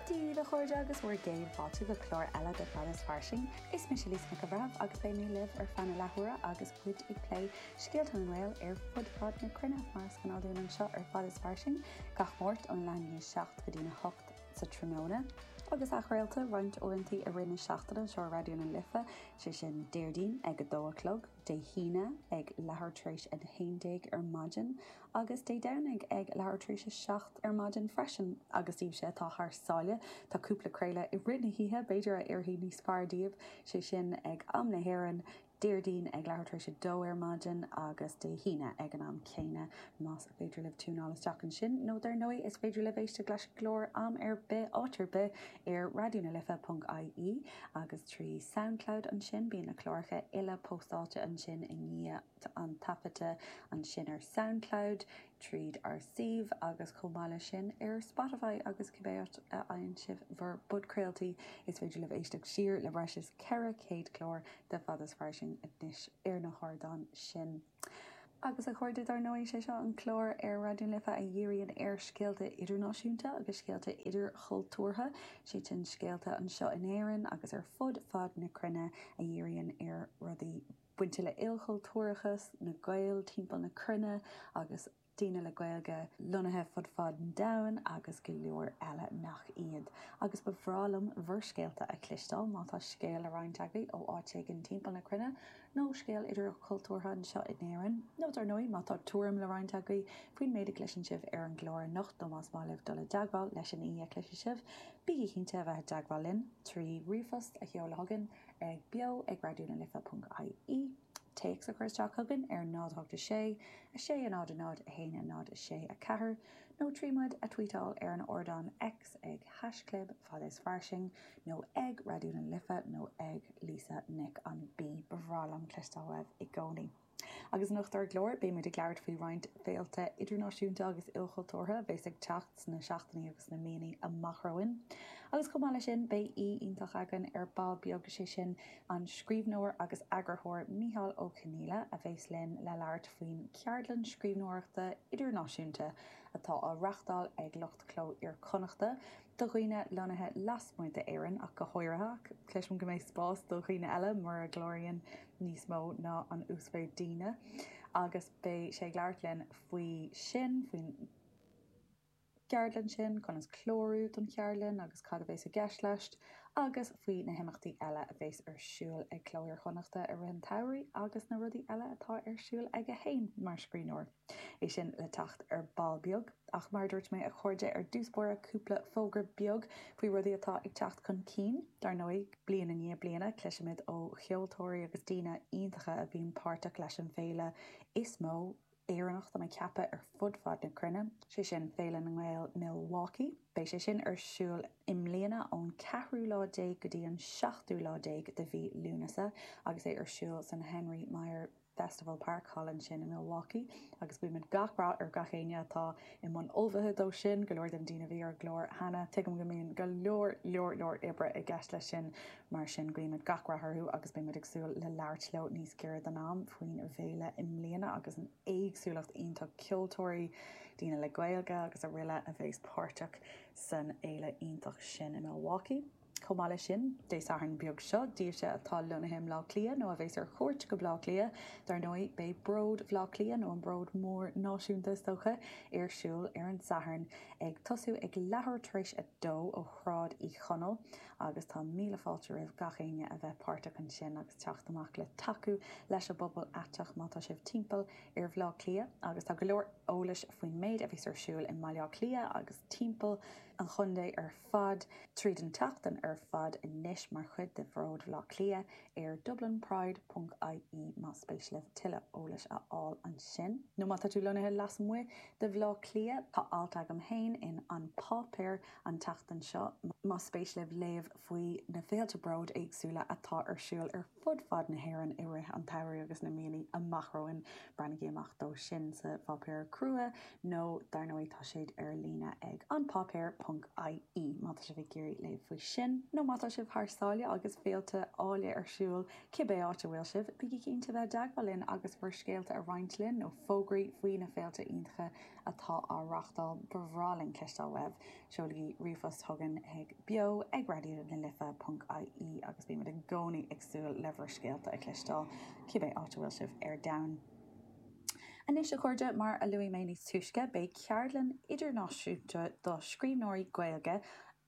Dia daoibh, a chairde, agus bhur gcéad fáilte go clár eile de Fad is Fairsing. Is mise Lisa Nic an Bhreithimh agus beidh mé libh ar feadh na leathuaire agus muid ag plé scéalta na nGael ar fud fad na cruinne, mar is gnáth dúinn anseo ar Fad is Fairsing gach Máirt ón leath i ndiaidh 7 go dtí a hocht sa tráthnóna. Agus athchraolta roinnt uaireanta i rith na seachtaine anseo ar Raidió na Life, sé sin Déardaoin ag a dó a chlog, Dé hAoine ag leathuair tar éis a 11 ar maidin, agus Dé Domhnaigh ag leathuair tar éis a 7 ar maidin freisin. Agus daoibhse atá thar sáile, tá cúpla craoladh i rith na hoíche, b'fhéidir, a oirfidh níos fearr daoibh, sé sin, ag am na hÉireann, Déardaoin ag leathuair tar éis a dó ar maidin, agus Dé hAoine ag an am céanna. Más féidir libh tiúnáil isteach ansin, nó dar ndóigh, is féidir libh éisteacht leis an gclár am ar bith, áit ar bith, ar Raidió na Life ponc ie agus trí Soundcloud ansin. Bíonn na cláracha uile póstáilte ansin i ndiaidh an taifeadta ansin ar Soundcloud, tríd ár suíomh agus chomh maith leis sin ar Spotify agus cibé áit a fhaigheann sibh bhur bpodchraoltaí. Is féidir libh éisteacht siar le breis is 400 clár de Fad is Fairsing anois ar na hardáin sin. Agus, a chairde, dar ndóigh, sé seo an clár ar Raidió na Life a dhíríonn ar scéalta idirnáisiúnta agus scéalta idirchultúrtha, sé sin, scéalta anseo in Éirinn agus ar fud fad na cruinne a dhíríonn ar rudaí bainte le ilchultúrachas, na Gaeil timpeall na cruinne agus. daoine le Gaeilge lonnaithe fud fad an domhain agus go leor eile nach iad. Agus ba bhreá liom bhur scéalta a chloisteáil, má tá scéal le roinnt agaibh ó áit éigin timpeall na cruinne, nó scéal idirchultúrtha anseo in Éirinn, nó dar ndóigh má tá tuairim le roinnt agaibh faoin méid a gcloiseann sibh ar an gclár anocht nó más maith libh dul i dteagmháil leis an aoi a chloisfidh sibh, bígí cinnte a bheith i dteagmháil linn trí ríomhphost a sheoladh chugainn ag beo ag raidionalife.ie. téacs a chur isteach chugainn ar 0 8 6 6 0 0 1 0 6 4 nó trí muid a tweetáil ar an ardán X ag haischlib Fad is Fairsing nó ag Raidió na Life nó ag Lisa Nic an B. Ba bhreá liom cloisteáil uaibh i gcónaí. Agus anocht ar an gclár, beidh muid ag labhairt faoi roinnt féilte idirnáisiúnta agus ilchultúrtha a bheas ag teacht sna seachtainí agus sna míonna amach romhainn. Agus chomh maith leis sin, beidh aoi iontach againn ar ball beag, sé sin, An scríbhneoir agus eagarthóir Micheál Ó Conghaile a bheas linn le labhairt faoin cheardlann scríbhneoireachta idirnáisiúnta atá á reáchtáil ag lucht Chló Iar-Chonnachta do dhaoine lonnaithe lasmuigh d'Éirinn ach go háirithe, ach cloisim go mbeidh spás do dhaoine eile mura gcláraíonn níos mó ná an uasmhéid daoine, agus beidh sé ag labhairt linn faoi sin, faoin. gceardlann sin, conas clárú don cheardlann agus cad a bheas i gceist leis, agus faoi na himeachtaí eile a bheas ar siúl ag Cló Iar-Chonnachta i rith an tsamhraidh agus na rudaí eile atá ar siúl aige féin mar scríbhneoir. É sin le teacht ar ball beag, ach mar a dúirt mé, a chairde, ar dtús báire cúpla fógra beag faoi rudaí atá ag teacht chun cinn. Dar ndóigh, bliain i ndiaidh bliana, cloisimid ó cheoltóirí agus daoine iontacha a bhíonn páirteach leis an bhféile is mó, Éireannach tá mé ag ceapadh ar fud fad na cruinne, sé sin, Féile na nGael Milwaukee. Beidh sé sin ar siúl i mbliana ón ceathrú lá déag go dtí an seachtú lá déag de mhí Lúnasa agus é ar siúl san Henry Maier Festival Park, thall ansin i Milwaukee. Agus guímid gach rath ar gach éinne atá i mbun ullmhaithe dó sin, go leor de na daoine a bhí ar an gclár cheana, tuigim go mbíonn go leor, leor, leor oibre i gceist leis sin. Mar sin, guímid gach rath orthu agus beimid ag súil le labhairt leo níos giorra don am faoin bhféile i mbliana agus an éagsúlacht iontach ceoltóirí, daoine le Gaeilge agus aroile a bheas páirteach san fhéile iontach sin i Milwaukee. Chomh maith leis sin, Dé Sathairn beag seo daoibhse atá lonnaithe i mBleá Cliath nó a bheas ar chuairt go Bleá Cliath, dar ndóigh, beidh Bród Bhleá Cliath, nó an Bród Mór Náisiúnta is dócha, ar siúl ar an Satharn, ag tosú ag leathuair tar éis a dó ó Shráid Uí Chonaill. agus tá míle fáilte roimh gach éinne a bheith páirteach ansin agus teacht amach le tacú leis an bpobal aiteach má tá sibh timpeall ar Bhaile Átha Cliath agus tá go leor eolais faoin méid a bheas ar siúl i mBaile Átha Cliath agus timpeall an chontae ar fad tríd an tseachtain ar fad anois mar chuid de Bhród Bhaile Átha Cliath ar Dublin Pride ponc ie más spéis libh tuilleadh eolais a fháil ansin. Nó má tá tú lonnaithe lasmuigh de Bhaile Átha Cliath, tá alt agam féin in An Páipéar An tseachtain seo, más spéis libh léamh faoi na féilte bróid éagsúla atá ar siúl ar fud fad na hÉireann i rith an tsamhraidh agus na míonna amach romhainn, breathnaígí amach dó sin sa pháipéar crua nó dar ndóigh tá siad ar líne ag An Páipéar ponc IE má tá sibh ag iarraidh léamh faoi sin. Nó má tá sibh thar sáile agus féilte áille ar siúl, cibé áit a bhfuil sibh, bígí cinnte bheith i dteagmháil linn agus bhur scéalta a roinnt linn nó fógraí faoi na féilte iontacha atá á reachtáil, ba bhreá linn cloisteáil uaibh. Seolaigí ríomhphost chugainn chuig beo ag raidió na life ponc ie agus bímid i gcónaí ag súil le bhur scéalta a chloisteáil, cibé áit a bhfuil sibh ar domhan. Anois, a chairde, mar a luaigh mé níos túisce, beidh ceardlann idirnáisiúnta do scríbhneoirí Gaeilge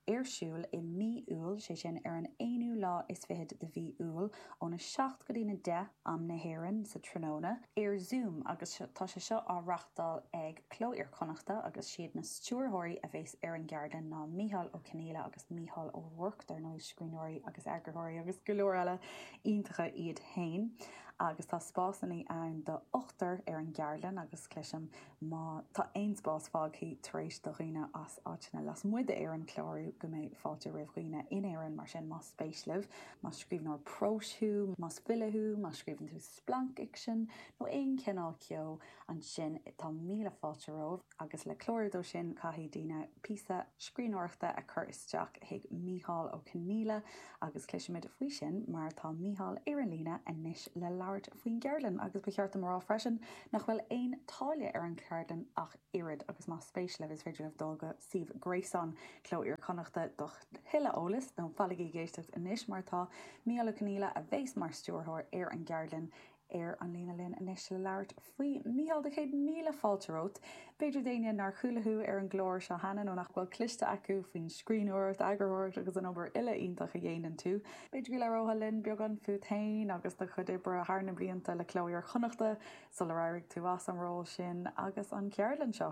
ar siúl i mí Iúil, sé sin ar an aonú lá is fichead de mhí Iúil, óna 7 go dtí na 10, am na hÉireann, sa tráthnóna, ar Zoom agus tá sé seo á reachtáil ag Cló Iar Chonnachta agus siad na stiúrthóirí a bheas ar an gceardlann ná Micheál Ó Conghaile agus Mícheál Ó Ruairc, dar ndóigh, scríbhneoirí agus eagarthóirí agus go leor eile iontacha iad féin agus tá spásanna ann do ochtar ar an gceardlann agus cloisim Má tá aon spás fágthaí tar éis do dhaoine as áiteanna lasmuigh d'Éirinn clárú go mbeidh fáilte roimh dhaoine in Éirinn, mar sin, más spéis libh, más scríbhneoir próis thú, más file thú, má scríobhann tú splancfhicsean nó aon chineál ceo, ansin tá míle fáilte romhaibh agus le clárú dó sin caithfidh daoine píosa scríbhneoireachta a chur isteach chuig Mícheál Ó Conghaile agus cloisfimid faoi sin mar tá Mícheál ar an líne anois le labhairt faoin gceardlann agus ba cheart dom a rá freisin Nach bhfuil aon táille ar an cheardlann ach oiread agus más spéis libh is féidir libh dul go suíomh gréasáin Chló Iar-Chonnachta do thuilleadh eolais, nó fanaigí ag éisteacht anois mar tá Mícheál Ó Conghaile, a bheas mar stiúrthóir ar an gceardlann, ar an líne linn anois le labhairt faoi. Mícheál, tá céad míle fáilte romhat. B'fhéidir d'éinne nár chuala thú ar an gclár seo cheana nó nach bhfuil cloiste acu faoin scríbhneoireacht, eagarthóireacht agus an obair uile iontach a dhéanann tú, b'fhéidir go labhróthá linn beagán fút féin agus do chuid oibre thar na blianta le Cló Iar-Chonnachta sular éirigh tú as an ról sin agus an cheardlann seo.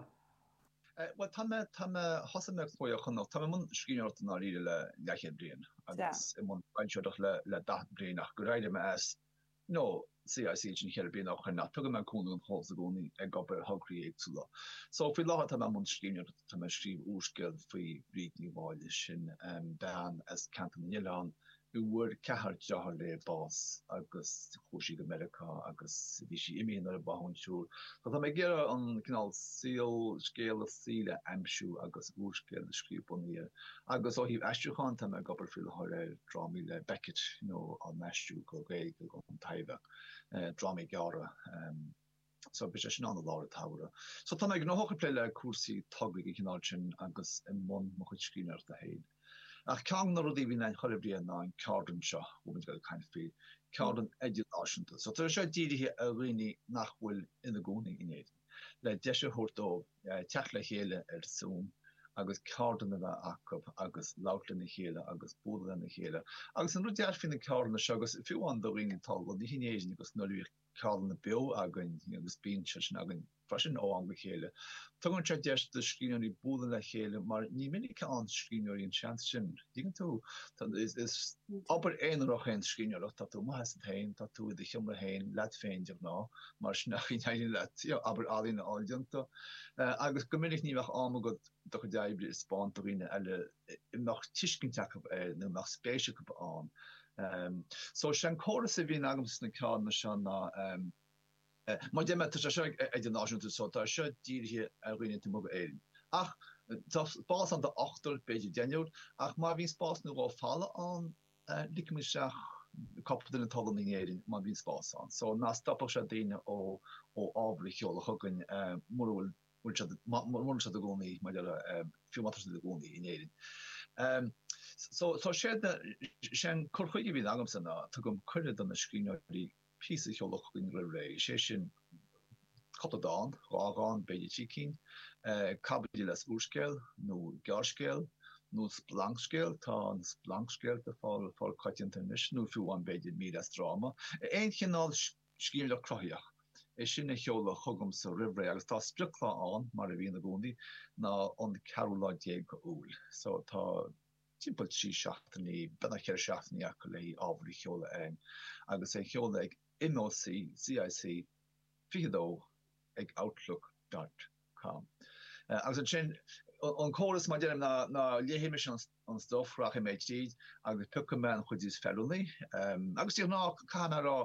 Bhuel, tá mé, tá mé, thosaigh mé Cló Iar-Chonnacht, tá mé i mbun scríbhneoireachta i ndáiríre le leathchéad bliain agus i mbun foilsitheoireachta le daichead bliain ach gur éirigh mé as, nó CIC sin ceithre bliana ó shin ach tugann mé cúnamh an chóras i gcónaí ag obair ar thograí éagsúla. So faoi láthair tá mé i mbun scríbhneoireachta, tá mé ag scríobh úrscéal faoi Bhríd Ní Mháille sin, bean as ceantar na nOileán a bhfuair ceathrar deartháir léi bás agus chuaigh sí go Meiriceá agus bhí sí imithe nuair a báthadh an triúr. So tá mé ag iarraidh an cineál saol, scéal a saoil a aimsiú agus úrscéal a scríobh bunaithe Agus ó thaobh aistriúcháin, tá mé ag obair faoi láthair ar dhrámaí le Beckett nó á n-aistriú go Gaeilge don Taibhdhearc, drámaí gearra. So beidh sé sin ann i lár an tsamhraidh. So tá mé gnóthach ag plé le cúrsaí tograí den chineál sin agus i mbun mo chuid scríbhneoireachta féin. Ach ceann de na rudaí a bhíonn againn chuile bhliain ná an ceardlann seo, a bhfuil muid ag caint faoi, ceardlann idirnáisiúnta. So tá sé seo dírithe ar dhaoine nach bhfuil ina gcónaí in Éirinn. le deis a thabhairt dóibh teacht le chéile ar Zoom agus ceardlann a bheith acu agus labhairt lena chéile agus bualadh lena chéile. Agus an rud deas faoi na ceardlanna seo, agus fiú amháin do dhaoine atá lonnaithe in Éirinn agus nuair a bhíodh ceardlanna beo againn, agus bíonn siad sin againn freisin ó am go chéile, tugann sé deis do scríbhneoirí bualadh le chéile mar ní minic a fhaigheann scríbhneoirí an seans sin. Tuigeann tú, is obair aonarach é an scríbhneoireacht. Tá tú amuigh asat féin, tá tú i do sheomra féin leat féin de ghnáth, mar sin é an chaoi a n-éiríonn leat obair ealaíne a fháil déanta. Agus go minic ní bheadh am agat do chuid oibre a thaispeáint do dhaoine eile a mbeadh tuiscint acu air nó a mbeadh spéis acu ann. So, sé an córas a bhíonn agamsa sna ceardlanna seo ná, Mar a deirim, tá sé seo idirnáisiúnta, so tá seo dírithe ar dhaoine taobh amuigh d'Éirinn. Ach tá spás ann do ochtar, b'fhéidir deichniúr, ach má bhíonn spás nó dhó folamh ann, ligfidh muid isteach cúpla duine atá lonnaithe in Éirinn má bhíonn spás ann. So ná stopfadh sé daoine ó ábhar a sheoladh chugainn mura bhfuil bhfuil siad mura bhfuil siad ina gcónaí mar a déarfá, fiú má tá siad ina gcónaí in Éirinn. So so séard na sé an cur chuige a bhíonn agamsa ná tugaim cuireadh do na scríbhneoirí píosa a sheoladh chugainn roimh ré, is é sin cúpla dán, dhá dhán, b'fhéidir trí cinn, caibidil as úrscéal nó gearrscéal, nó splancscéal, tá na splancscéalta fíorchoitianta anois, nó fiú amháin b'fhéidir mír as dráma. Aon chineál scéalaíocht cruthaitheach, é sin a sheoladh chugamsa roimh ré agus tá sprioclá ann, mar a bhíonn i gcónaí, ná an ceathrú lá déag d'Iúil. So tá. timpeall trí seachtainí, beagnach ceithre seachtainí acu le ábhar a sheoladh ann, agus é a sheoladh ag MOCCIC 22 ag outlook dot com. Agus ansin, an córas, mar a deirim, ná léifidh mise an stuif, rachaidh mé tríd agus piocfaidh mé an chuid is feiliúnaí. Agus de ghnáth, caithfidh mé a rá,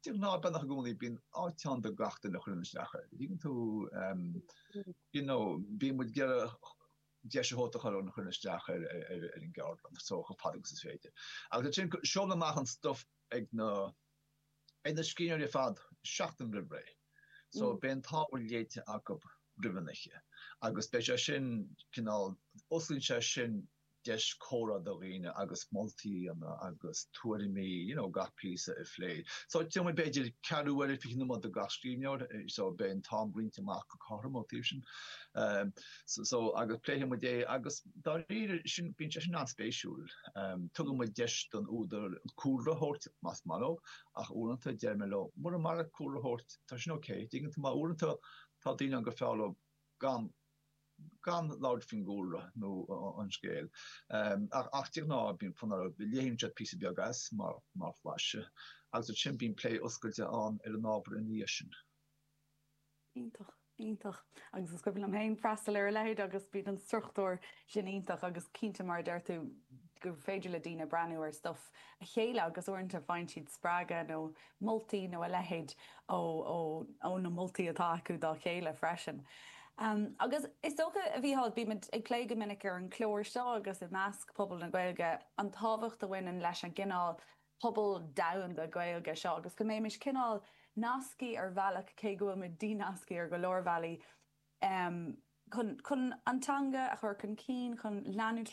de ghnáth, beagnach i gcónaí, bíonn áit ann do gach duine a chuireann isteach air. An dtuigeann tú? You know, bíonn muid ag iarraidh. deis a thabhairt do gach duine a chuireann isteach ar an gceardlann so chomh fada agus is féidir. Agus ansin seolfaidh mé amach an stuff ag na ag na scríbhneoirí ar fad seachtain roimh ré. So beidh an t-ábhar léite acu roimh an oíche agus beidh sé sin cineál osclaíonn sé sin deis comhrá do dhaoine agus moltaí a dhéanamh agus tuairimí you know gach píosa a phlé. So you know b'fhéidir ceathrú uair fiche nóiméad do gach scríbhneoir so beidh an t-am roinnt amach go cothrom ón taobh sin. Um, So agus pléifidh muid é agus dáiríre sin bíonn sé sin an-spéisiúil. Um, tugann muid deis don údar cúlra a thabhairt más maith leo, ach uaireanta deir mé leo, mura maith leo cúlra a thabhairt, tá sin OK. An dtuigeann tú mar uaireanta tá daoine ann gur fearr leo gan gan labhairt faoin gcúlra nó an scéal. Um, ach, ach de ghnáth bíonn fonn orthu, léann siad píosa beag as mar, mar bhlaiseadh agus ansin bíonn plé oscailte ann ar an ábhar ina dhiaidh sin. Iontach, iontach. Agus is cuimhin liom féin freastal ar a leithéid agus bíonn an struchtúr sin iontach agus cinnte mar a deir tú gur féidir le daoine breathnú ar stuif a chéile agus uaireanta faigheann siad spreagadh nó moltaí nó a leithéid ó na moltaí atá acu dá chéile freisin. Agus is dócha, a Mhichíl, bímid ag plé go minic ar an chlár seo agus i measc pobal na Gaeilge an tábhacht a bhaineann leis an gcineál pobal domhanda Gaeilge seo agus go mbeimis cineál nasctha ar bhealach, cé go bhfuil muid dínasctha ar go leor bealaí, chun an teanga a chur chun cinn, chun leanúint